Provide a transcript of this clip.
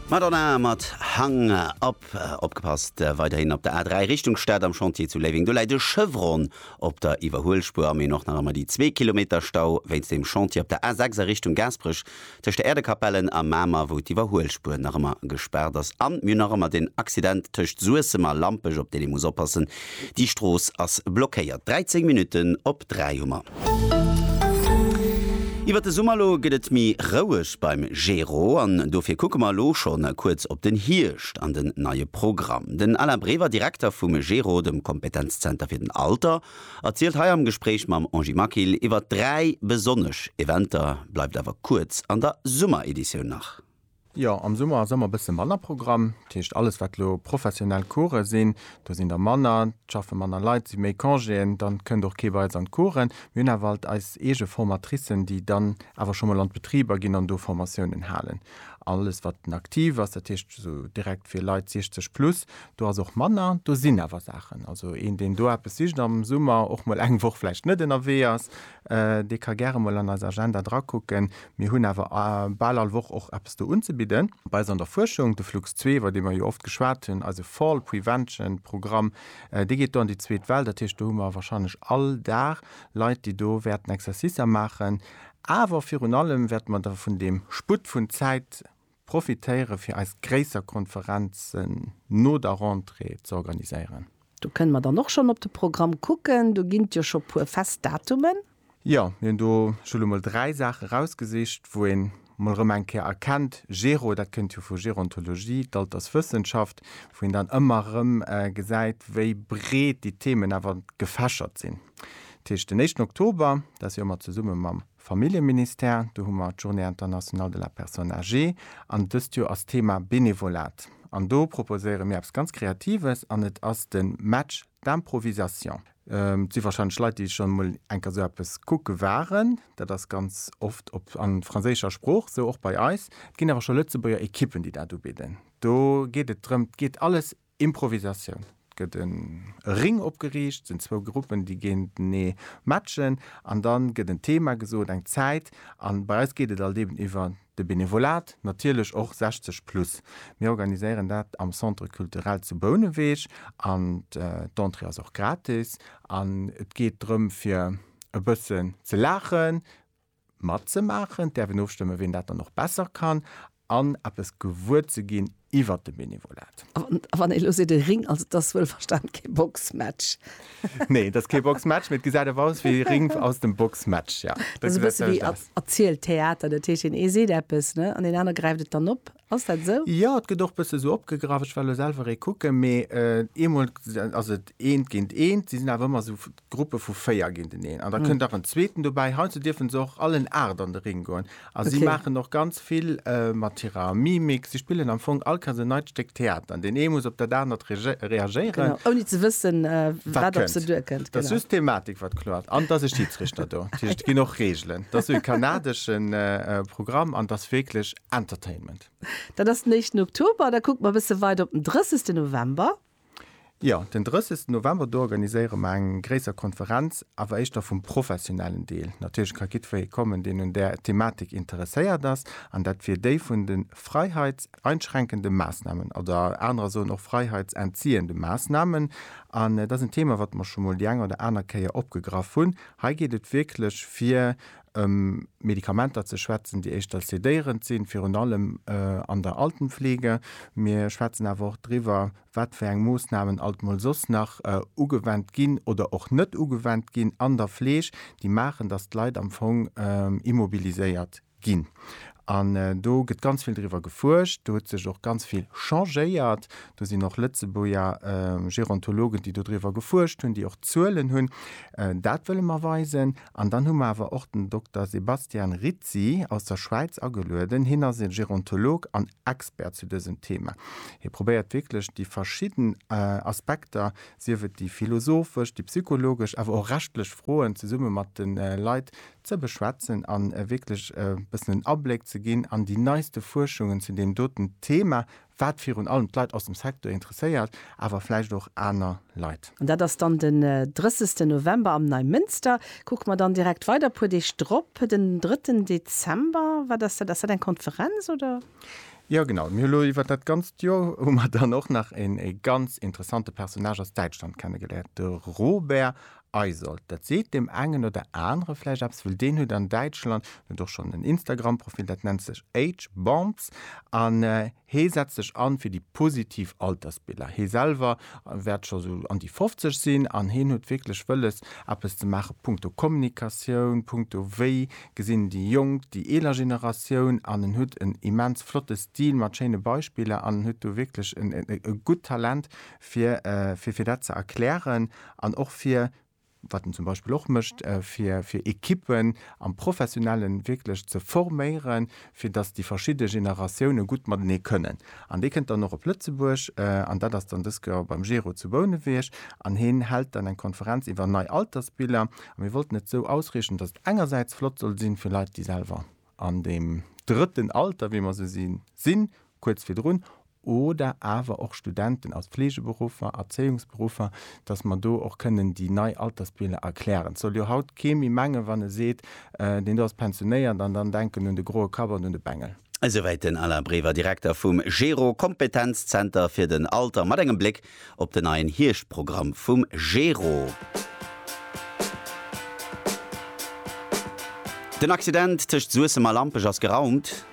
Madonna mat Hung Up. Opgepasst weiderhin op der A3 Richtung Stad am Chantier zu Léiweng. Do läit e Chevron op der Iwwerhuelspuer. Am Een och nach ëmmer déi zwee Kilometer Stau wéinst dem Chantier op der A6 a Richtung Gaasperech tëscht der Äerdekapellen a Mamer, wou d'Iwwerhuelspuer nach ëmmer gespaart ass. An mir hunn nach ëmmer den Accident tëscht Suessem a Lampech, op deen ee muss oppassen. Déi Strooss ass blockéiert. 13 Minutten op 3 hu mer. Iwwert de Summer elo gëtt et méi roueg beim Gero an dofir kucke mer elo scho kuerz op den Hierscht an den neie Programm. Den Alain Brever, Direkter vum Gero, dem Kompetenzzenter fir den Alter, erzielt hei am Gespréich mam Angie Maquil iwwert dräi besonnesch Eventer. Bleift awer kuerz an der Summereditioun nach. Jo, am Summer ass ëmmer bësse manner Programm. Dat heescht, alles wat elo professionell Coursë sinn, do sinn der manner, et schaffe manner Leit, et si méi Congéen, dann kënnt och kee bei eis an d'Coursen. Mir hunn awer alt eis eege Formatricen, déi dann awer scho mol an d'Betriber ginn an do Formatiounen halen. Alles wat den Active ass, dat heescht esou direkt fir Leit 60 plus, do ass och manner. Do sinn awer Saachen, also een deen do eppes sicht am Summer, och mol eng Woch vläicht net ënnerwee ass, Dee ka gäre mol an eis Agenda drakucken. Mir hunn awer bal all Woch och eppes do unzebidden. Bei eis an der Fuerschung, de Flux zwee, iwwer dee mer jo oft geschwat hunn, eise Fall Prevention Programm, dee geet do an déi zweet Well. Dat heescht, do hu mer warscheinlech all Dag Leit, déi do wäerten Exercicer maachen. Awer virun allem wäerte mer da vun deem Sputt vun Zäit Profitéiere fir eis gréisser Konferenzen no der Rentrée ze organiséieren. Do kënne mer dann och schonn op de Programm kucken. Do ginn et jo scho puer fest Datumen. Jo, mir hunn do scho elo mol dräi Saache erausgesicht, wou een mol erëm eng Kéier erkennt, Géro, dat kënnt jo vu Gérontologie, d'Alterswëssenschaft, wou een dann ëmmer erëm gesäit, wéi breet déi Themen awer gefächert sinn. Dat heescht den éischten Oktober, dat ass jo ëmmer zesumme mam. Familljeministère, do hu mer d'Journée internationale de la personne âgée an dëst Joer ass Thema Bénévolat an do proposéiere mir eppes ganz Kreatives an et ass de Match d'improvisation. Et si warscheinlech Leit, déi schonn emol eng Kéier esou eppes kucke waren. Dat ass ganz oft op a franséischer Sprooch, esou och bei eis. Et ginn awer scho Lëtzebuerger Ekippen, déi dat ubidden. Do geet et drëm, et geet alles Improvisatioun, et gëtt e Ring opgeriicht, et sinn zwou Gruppen, déi géintenee matchen an da gëtt en Thema gesot, eng Zäit a bei eis geet et alt eben iwwer de Benevolat, natierlech och 60 plus. Mir organiséieren dat am Centre Culturel zu Bouneweg an d'Entrée ass och gratis an et geet drëm fir e bëssen ze laachen, matzemaachen, d'äerfen ofstëmme wien dat dann och besser kann, an eppes gewuer ze ginn iwwert de Benevolat. A wann ee elo seet, e Ring, also et ass wuelverstan kee Boxmatch. Nee, et ass kee Boxmatch, mee et gesäit awer aus wéi e Ring aus dem Boxmatch, jo. Dat ass e bësse wéi erzielt Theater, dat heescht deen ee seet eppes, ne, an deen aner gräift et dann op Ass dat esou? Jo, et gëtt och e bësse esou opgegraff. Ech war elo selwer e kucken, mee eemol ass et eent géint eent, si sinn awer ëmmer esou Gruppe vu véier géinteneen an da kënnt nach en zweeten dobäi. Heiansdo dierfen se och all en Aacht an de Ring goen a si maachen och ganz vill mat hirer Mimik. Si spillen am Fong all Chance en neit Stéck Theater an deen ee muss op dat anert reagéieren, ouni ze wëssen, wat op se duerkënnt. Et ass just d'Thematik, wat kloer ass an et ass e Schiidsrichter do. Dat heescht, et ginn och Reegelen. Et ass e kanadeschen Programm an et ass wierklech Entertainment. Dat ass den éischten Oktober. Da kucke mer e bësse weider op den 30. November. Jo, den 30. November, do organiséiere mer eng gréisser Konferenz, awer éischter vum professionellen Deel. Natierlech ka jiddweree kommen, deen un där Thematik interesséiert ass, an dat wier déi vun de freiheitseinschränkende Maassnahmen oder anerer soen och freiheitsentziehende Maassnahmen. An et ass en Thema, wat mer scho mol déi eng oder aner Kéier opgegraff hunn. Hei geet et wierklech fir ëm Medikamenter ze schwätzen, déi éischter sedéierend sinn, virun allem an der Altenpflege. Mir schwätzen awer och driwwer, wat fir eng Moossnamen alt mol soss nach ugewendt ginn oder och net ugewendt ginn an der Fleeg, déi maachen, dass d'Leit am Fong immobiliséiert ginn. An do gëtt ganz vill driwwer gefuerscht, do huet sech och ganz vill changéiert, do sinn och Lëtzebuerger Gerontologen, déi dodriwwer gefuerscht hunn, déi och Zuelen hunn. Dat wëlle mer weisen. An dann hu mer awer och den Dokter Sebastian Rizzi aus der Schwäiz agelueden. Hien ass e Gerontolog an Expert zu dësem Thema. Hie probéiert wierklech déi verschidden Aspekter, sief et déi philosophesch, déi psychologesch, awer och rechtlech Froen zesumme mat de Leit ze beschwätzen a wierklech e bëssen en Abléck ze ginn an déi neiste Fuerschungen zu deem doten Thema, wat virun allem d'Leit aus dem Secteur interesséiert, awer vläicht och aner Leit. An dat ass dann den 30 November am Neimënster. Kucke mer dann direkt weider e puer Deeg drop, den 3 Dezember. Wat ass dat? Ass dat eng Konferenz, oder? Jo, genau. Mir hu lo iwwer dat ganzt Joer hu mer dann och nach een ee ganz interessante Personnage aus Däitschland kennegeléiert, de Robert Eisold, dat seet deem engen oder anere vläicht eppes, well deen huet an Däitschland, en huet och schonn en Instagram-Profil, dat nennt sech Age'Bomps an hee setzt sech an fir déi positiv Altersbiller. Hee selwer wäert scho sou an déi 50 sinn an heen huet wierklech wëlles, eppes ze maachen punkto Kommunikatioun, punkto wéi gesinn déi Jonk déi eeler Generatioun an en huet en immens flotte Stil mat schéine Beispiller an en huet do wierklech e gutt Talent, fir dat ze erklären. An och fir, wat en zum Beispill och mécht, fir Ekippen am Professionellen wierklech ze forméieren, fir datt déi verschidde Generatioune gutt matenee kënnen. An dee kënnt dann och op Lëtzebuerg. An dat ass dann dës Keer beim Gero zu Bouneweg. An hien hält dann eng Konferenz iwwer nei Altersbiller. A mir wollten et esou ausriichten, datt et engersäits flott soll sinn, fir Leit, déi selwer an deem drëtten Alter, wéi mer se sinn, sinn, kuerz virdrun, oder awer och Studenten aus Fleegeberuffer, Erzéiungsberuffer, dass mer do och kënnen déi nei Altersbiler erklären. Et soll jo haut kee méi mengen, wann e seet, deen do ass pensionéiert an dann denken un de groe Kapp an un de Bengel. Esouwäit den Alain Brever, Direkter vum GERO, Kompetenzzenter fir den Alter, mat engem Bléck op den neien Hierschtprogramm vum GERO. Den Accident tëscht Suessem a Lampech ass geraumt.